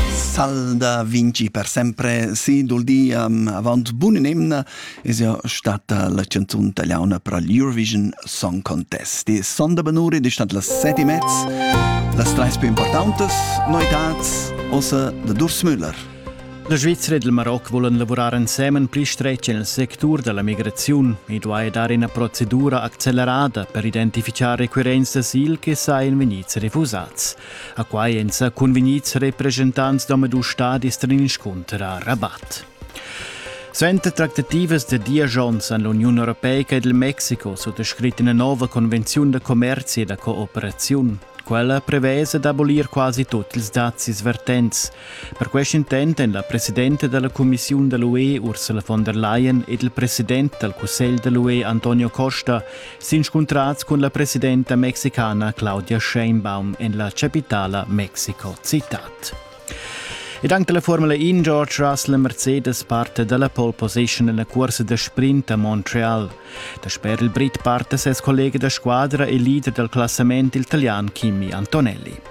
Salda vinci per sempre si dul di um, avant bun nemna es ja stata la canzun italiana per l'Eurovision Song Contest. Die Sonderbenure, die stand las seti mezz, las treis più importantes noitats, ossa de Durs Müller. La Svizzera e il Maroc volen lavurar ensemen pli stretg nel sectur della migrazione e duai dare una procedura accelerata per identificare requirenti d'asil che sa in venire refusats. A quai èn sa cunvegnids represchentants d'omadus stadis tar inscunter a Rabat. Suenter tractativas da diesch onns han l'Uniun europeica ed il Mexico suttascrit ina nova convenziun da commerzi e da cooperaziun. Quella prevesa d'abolir quasi tut ils dazis vertents. Per quest intent èn la presidenta da la cumissiun da l'UE Ursula von der Leyen ed il president dal cussegl da l'UE Antonio Costa S'inscuntrats cun la presidenta mexicana Claudia Sheinbaum en la chapitala Mexico-Citat. Ed anche la Formula In George Russell Mercedes parte dalla pole position nella corsa da sprint a Montreal. Dasper il Brit parte ses collega da squadra e leader dal classament il italian Kimi Antonelli.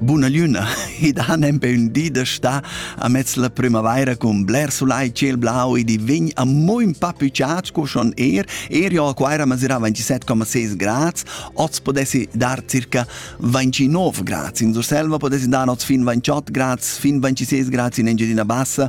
Buna lüna, id han empe ün di da stà amez la primavaira cun bler sulai ciel blau ed i vegn a mo ün pa pü ciat sco schon er. Er jo a Quaira masirà 27,6 grads, oz podessi dar circa 29 grads. In Surselva podessi dar oz fin 28 grads, fin 26 grads in Engiadina Bassa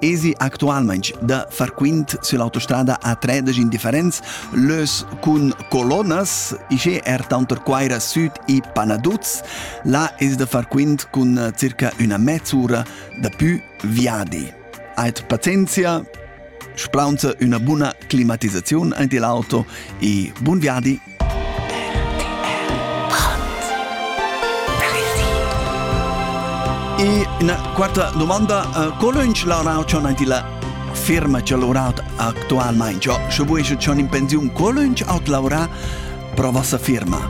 Esi actualmain da far quint sull'autostrada A3 indifferents lös cun colonas, ischè er tanter Quaira Süd e Panaduz. Là es da far quint cun circa üna mezz'ura da pü viadi. Ait pazienzia, splaunza üna buna climatisaziun aint il auto e bun viadi E üna quarta domanda. Uh, co lönch la rau ch'on aint illa firma ch'el lavurat actualmaing? Scho, scho vues ch'on in pensiun, co lönch aut lavurà pro vossa firma?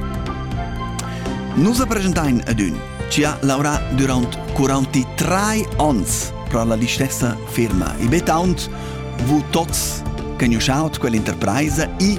Nus presentain ad ün chi ha lavorà durant 43 ons pro la listessa firma. I bet aunt vu tots conosciut quell'interpresa e